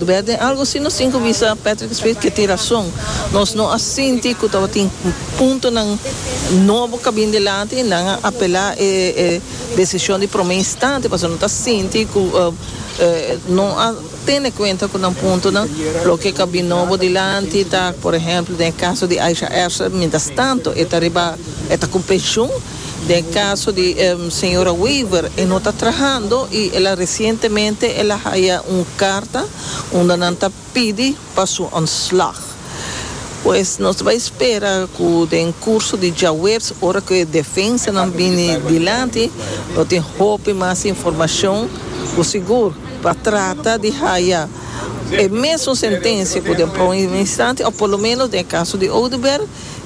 Bèt den algu si nos tin ku bisa Patrick Smith ke tin rason. Nos no a sinti ku tabatin puntonan nobo ka bin dilanti. Nan a apelá e desishon di promé instante pasobra nan ta sinti ku no a tene kuenta ku nan puntonan. Loke ka bin nobo dilanti ta, por ehèmpel den e kaso di Aisha Erser, mientrastanto e ta riba e ta ku penshun. Den caso di señora Weaver e no ta trahando y el a recientemente el a haya un carta unda nan ta pidi pa su ontslag. Pues nos ta bay spera cu den curso di djawerz ora cu e defensanan bini dilanti lo tin hopi mas informacion cu sigur pa trata di haya e mesun sentencia cu den pron instanti of por lo menos den e caso di Oduber.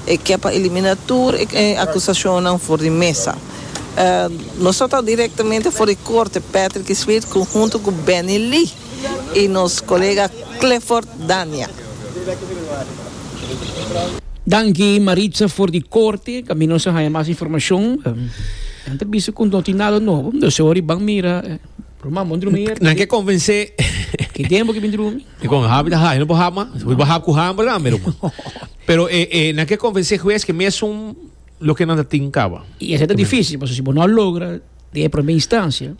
e ke pa elimina tur e akusashonnan for di mesa. Nos a tabata direktamente for di korte, Patrick Smith konhunto ku Benny Lee i nos kolega Clifford Dania. Danki Maritza for di korte tambe nos a haña mas informashon nan ta bisa ku no tin nada nobo dos e ori ban mira Ruman bon drumi ayerta Nan ke konvensé Ke den bo ke bin drumi. Dikon habi ta habi no por hab mas wi bo hab ku ham por tambe Ruman. Pero e e nan ke konvensé hues ke mesun loke nan ta tin kaba. I esei ta difísil, pasobra si bo no a logra den e promé instansia,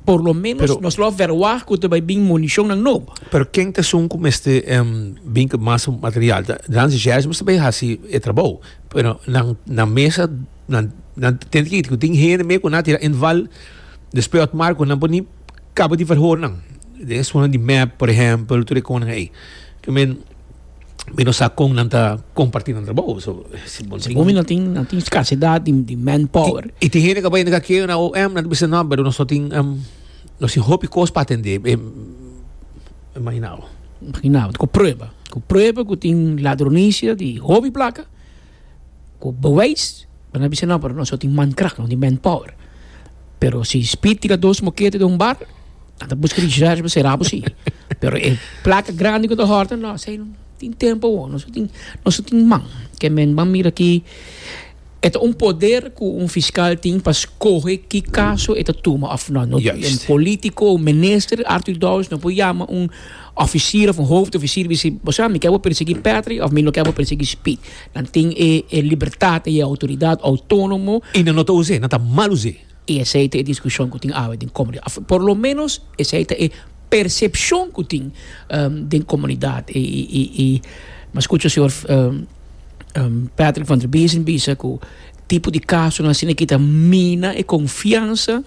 por lo menos Pero- nos lo verwá ku ta bai bin munishonnan nobo. Pero ken ta esun ku mester em, bin ku mas material? Ta- Dan Zhèrs mester bai hasi e trabou. Pero nan nan mesa nan nan tende ke yta ku tin hende me ku nan a tira inval despues Otmar ku nan por ni kaba di verhoornan. Den e esunnan di mep, por ehèmpel, tur e konan ei. Ke men. Mi no sa kon nan ta kompartí nan trabou. So, si bon tin... Omi nan tin, nan tin skasedat di, di manpower. I, i tin hende ku a bai na kakeo na OM, nan ta bisa, no, pero nos no tin, um, nos tin hopi kos pa atendé. E, e mahinabo. Mahinabo. Ku prueba. Ku prueba ku tin ladronisia di hopi plaka. Ku beweis bo ta bisa no pero nos no tin mankrach no tin manpower pero si speed tira dos mokete den un bar a ta buska research pa sera bo si pero e plaka grandi ku ta hòrta no esei no tin tempo awor nos no tin nos no tin man ke men ban mira aki e ta un poder ku un fiskal tin pa skohe ki kaso e ta tuma òf no no tin den polítiko o minister Artur Dou no por yama un. Officier of hoofd officier bi si boso mi ke bo persegui Patrick of mi no ke bo persegui Speed nan tin e e libertad e autoridad autonomo. Y nan no ta us'e nan ta mal us'e. Y esey ta e discusion cu tin awe den comunidad of por lo menos esey ta e percepcion cu tin den comunidad y y y y mi a scucha señor Patrick van der Wezen bisa cu tipo di casonan asina kita mina e confiansa.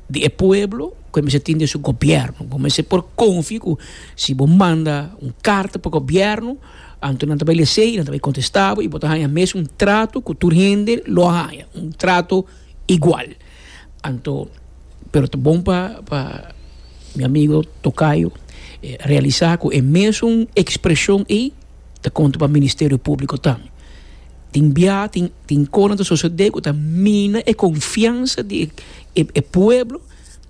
di e pueblo cu e mester tin den su gobierno. Bo mester por confia cu si bo manda un carta pa gobierno anto nan ta bay lesa y nan ta bay contesta bo y bo ta haya mes un trato cu tur hende lo a haya, un trato igual. Anto, pero ta bon pa pa mi amigo tocayo realisa cu e mesun expresion ey. ta konta pa Ministerio Públiko tambe. Tin bia, tin, tin kos nan ta sosodé ku ta mina e konfiansa di e, e pueblo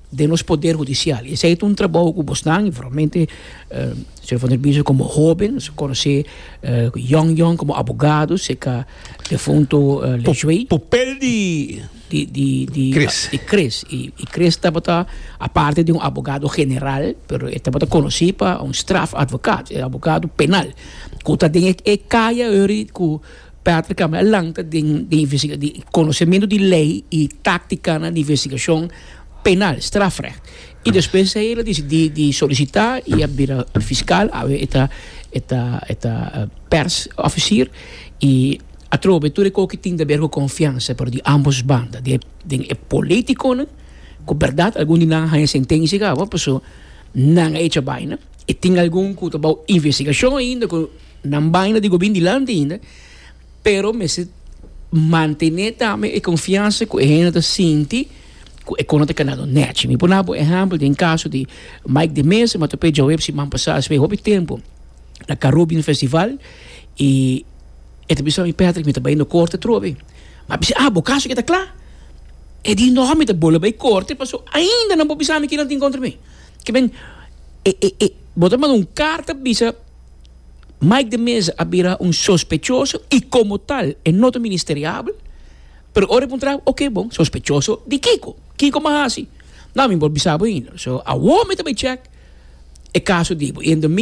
den nos poder hudisial. I esei ta un trabou ku bosnan, formalmente señor Van der Biesen komo hóben, su konosé yòn yòn komo abogados, e ka defunto Leshue. Pupel di. di di di Chris. di Chris i i Chris tabata aparte di un abogado general pero e tabata konosí pa un strafadvocaat e abogado penal ku ta den e e kaya yori ku Patrick Camara a lanta den den investiga di konosementu di lei i táktikanan di investigashon penal strafrecht i despues ei el a desidí di solisitá i a bira fiskal awe e ta e ta e ta pèrsofisier i Atrobe tur e koki tin ta ber ku konfiansa, pero di ambos banda den e politikonan ku bèrdat algun di nan a haña sentensia kawa paso nan a echa baina, e tin algun ku ta bou investigashon ainda ku nan baina di gobierno dilanti ainda, pero mester mantené tambe e konfiansa ku e hende ta sinti ku e konan ta kanado nèchi. Mi por na bo ehèmpel den kaso di Mike de Meza, mi a top'é djaweps siman pasá, espe hopi tempu na Carubbean Festival i E ta bisa mi, Patrick, mi ta bai na korte atrobe. Mi a bisa, ah, bo kaso ke ta kla? E di noha mi ta bolbe bai korte pasobra ainda nan por bisa mi kinan tin kontra mi. Ke men, e, e, e, bo ta manda un karta bisa Mike de Meza a bira un sospechoso i komo tal e no ta ministeriabel, pero ora e puntra, oke, bon, sospechoso di kiko? Kiko mi a hasi? Nada, mi no por bisa bo ainda. So, awor mi ta bai chèk e kaso di bo. I en domingo.